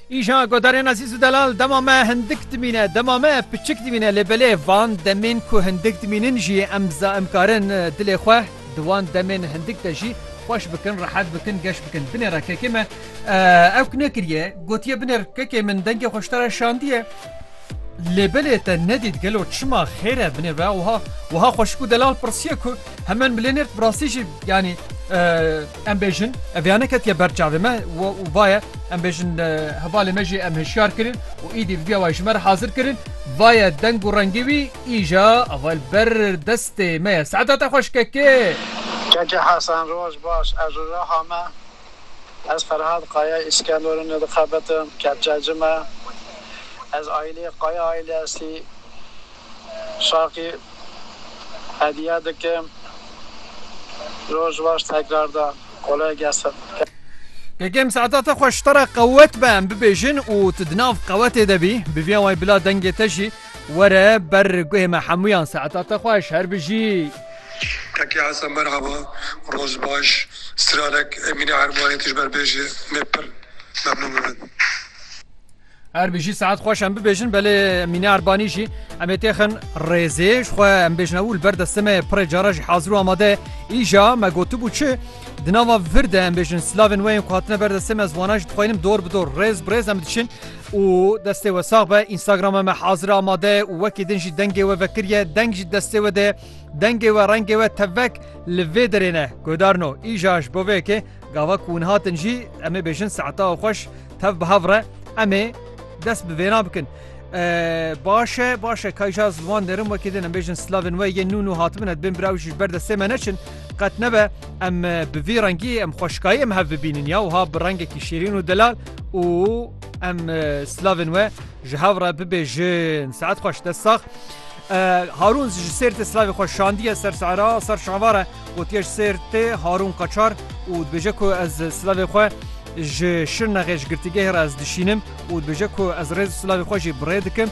Îja godarên Ezîz û Delal dema me hindik dimîne, dema me piçik dimîne lê belê van demên ku hindik dimînin jî em em karin dilê xwe di wan demên hindik de jî xweş bikin, rehet bikin, geş bikin. Binê re kekê me ew ki nekiriye gotiye binê re kekê min dengê xwe ji te re şandiye. Lê belê te nedît gelo çima xêr e binê ve wiha wiha xweşik û Delal pirsiye ku hemen bilê nêrt bi rastî jî yanî Em bêjin ev ya neketiye ber çavê me û vaye em bêjin hevalê me jî em hişyar kirin û îdî vîdyoya wayê ji me re hazir kirin. Vaye deng û rengî wî îja ava li ber destê me ye. Seeda te xweş kekê. Keke Hesen roj baş ez ji Riha me ez Ferhad Kaya Îskenderûnê dixebitim kepçe ci me ez aîleyê Kaya aîlestî Şakî hediye dikim roj baş tekrar da kolay gesin. Kekem saeta te xweş te re qewet be em bibêjin û tu di nav qewetê de bî bivîya way bila dengê te jî were ber guhê me hemûyan saeta te xweş her bijî. Kekê Hesen merhaba roj baş stranek Emîne Ermanê tu ji ber bêjê me pir memnûn bibin. Erbî jî saet xweş em bibêjin belê Mîne Erbanî jî em ê têxin rêzê ji xwe em bêjin ew li ber destê me pirê cara jî hazir û amade îja me gotibû çi di nava vir de em bêjin silavên wê yên ku hatine ber destê me ziwana jî dixwînim dor bi dor rêz bi rêz em diçin û destê we sax be Instagrama me hazir amade û wekî din jî dengê we vekiriye deng jî destê we de dengê we rengê we tevek li vê derêne gudarno îja ji bo vê yekê Gava ku hûn hatin jî em ê bêjin saeta xweş tev bi hev re em ê dest bi vêna bikin. Baş e baş e kayja ji wan derin wekî din em bêjin slavên we yên nû nû hatibin et bên biraw jî ji ber destê me neçin qet nebe em bi vî rengî em xweşkayî em hev bibînin ya wiha bi rengekî şêrîn û delal û em slavên we ji hev re bibêjin saet xweş dest sax. Harûn ji Sêrtê silavê xwe şandiye ser Sehra, ser Şevare gotiye ji Sêrtê Harûn Qaçar û dibêje ku ez silavê xwe ji Şirnexê ji girtîgehê re ez dişînim û dibêje ku ez rêz û silavê xwe jî bi rê dikim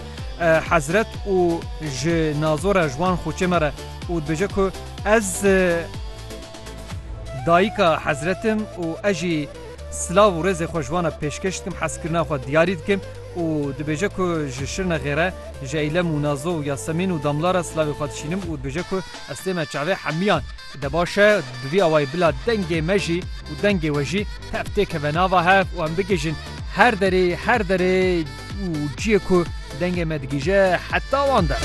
hezret û ji nazo re ji wan xuçê me re û dibêje ku ez dayika hezretim û ez jî Silav û rêzê xwe ji wan re pêşkêş dikim, hezkirina xwe diyarî dikim û dibêje ku ji Şirnexê re ji Eylem û Nazo û Yasemîn û Damla re silavê xwe dişînim û dibêje ku ez tê me çavê hemiyan. De baş e, bi vî awayî bila dengê me jî û dengê we jî tev tê keve nava hev û em bigihîjin her derê, her derê û ciyê ku dengê me digihîje heta wan de.